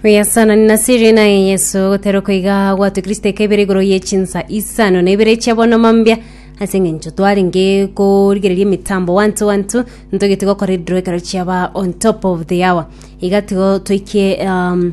Oyasanani na siri naye Yeso, ogotera okoiga gwatwe Kristo ekebere igoro ye chinsa isano na ibere chia bono mambia ase eng'encho twarenge korigereria emitambo wantu wantu ntogete gokora ediro ekero chiaba on top of the hour iga tigo toikie um,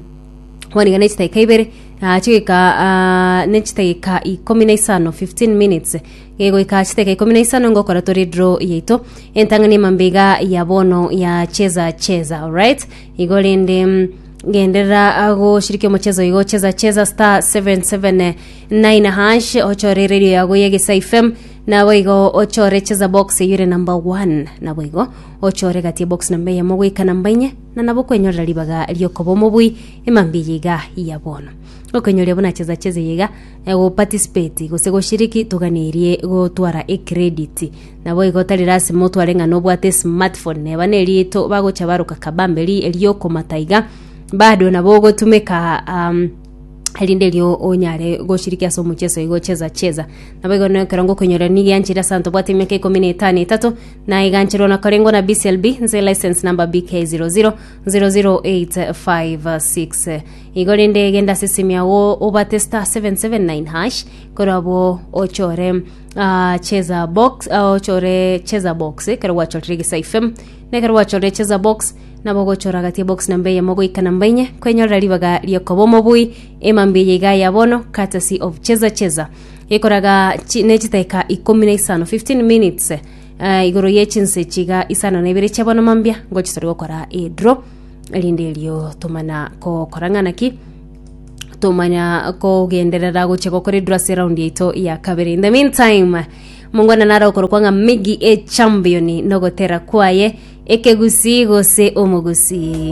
kwaniga na chitaika ibere ah, chigika ah, ne chitaika ikumi na isano 15 minutes Gegoika chiteka ikomi na isano ngokora tore draw yaito entang'ani emambe iga ya bono ya cheza cheza alright igo rende mm, genderera ah, goshiriki omochezo igo cheza cheza star 779 hash ochore radio yago ya gesa fm nabo igo ochore cheza box eyore number 1 nabo igo ochore gati box namba eyemo goika namba inye na nabo kwenyorera ribaga riokoba omobui emambe yiga ya bono okenyoria buna cheza cheza yiga Goparticipate gose goshiriki toganerie gotwara ecredit. Naboigo tari lasima otware ng'a nobwate esmartphone neba nerieto bagocha baroka kabambe ri eriokomata iga bado nabo ogotumeka um, erinde erio onyare goshiriki ase omocheso igo cheza cheza naboigo nero ekero ngokonyora nigianchire ase anto bwate emiaka ikomi na etano etato naiganchirwa nakorengwa na BCLB nse license number BK 0000856 Igo rende genda ase esemi yao obate star 779 hash korabwo ochore ah, cheza box ah, ochore cheza box ekero gwachorire egesaife na ekero gwachorire cheza box nabo ogochora gati ya box namba eyemo goika namba enye kwenyorera ribaga riokoba omobui emambia eye iga ya bono courtesy of cheza cheza ekoraga chi- ne chitaika ikomi na isano 15 minutes eh, igoro ye chinse chiga isano na ibere chia bono mambia ngochitori gokora edro Erinde erio tomanya kokora ng'ana ki? Tomanya kogenderera gochia gokora eduru ase eraundi yaito ya kabere. In the meantime, mongwana nare okorokwa ng'a Migi e Champion nogotera kwaye, ekegusi gose omogusi.